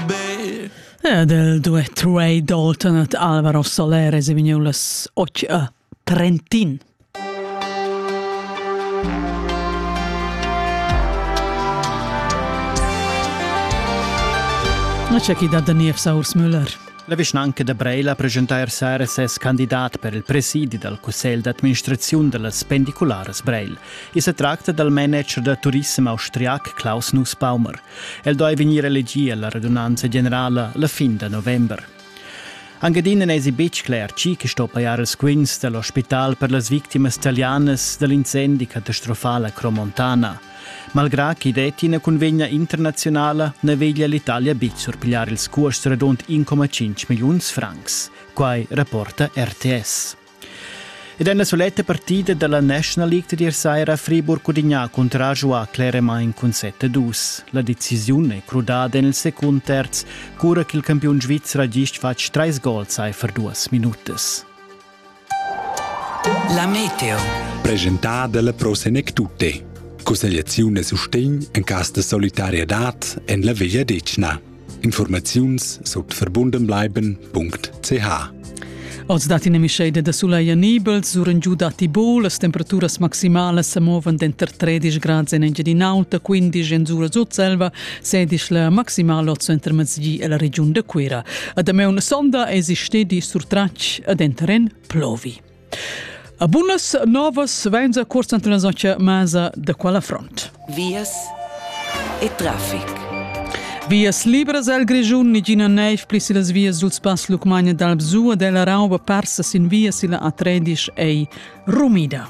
Be... Del due trei Dalton et Alvaro Soler se vignulas och Trentin. Na c'è chi da Daniev Saurs Müller. La vischnanca da Breila presentar sera ses candidat per il presidi dal cussegl d'administraziun dallas pendicularas Breil. I se tracta dal manager da turissem austriac Klaus Nussbaumer. El doi vegnir elegì alla radunanza generala la fin da november. Angadina n'esi betg cler chi che sto pajar ils quints dell'ospital per las victimas italianas dall'incendi catastrofala Cromontana. Malgrà chi detti ina convegna internazionala ne veglia l'Italia bit surpigliar ils cuosts redond 1,5 milliuns francs. Quai rapporta RTS. Ed en la suletta partida dalla National League tier saira Friburg cudigna cunter giuà cleramain cun 7-2. La decisiun è crudada en il secund terz, cura ch'il campiun svizzer ha gist fatg trais gols aifer duas minutas. La meteo. Presentada dalla Pro Senec Tutte. Cussegliaziun e sustegn en cas de solidarietad en la Veglia Decna. Informaziuns sut verbundenbleiben.ch Oz dat ina mischeida da sulai anibel, suren giu datti bo, las temperaturas maximalas sa movan denter 13 grads en Engiadin'Aulta, 15 en Sura Sutselva, 16 la maximala oz intermezzi e la regiun da Cuira. A Dameun sonda es stedi surtratg a denteren plovi. A bunas novas vainza cuorsa transoncha masa da quala front? Vias e trafic. Vias libras al Grischun, nigina neiv pli sillas vias sul spass Lucmagna d'Albsua della Rauba parsa sin via silla A13 ei rumida.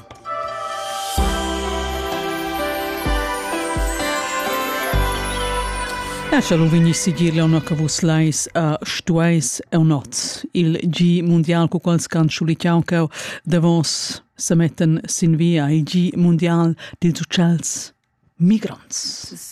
Escha lu vegni sigir leona che vus leis a stueis eu noz il gi mundial cu quals can schulichau cheu davos se metten sin via il gi mundial dils uccells migrants.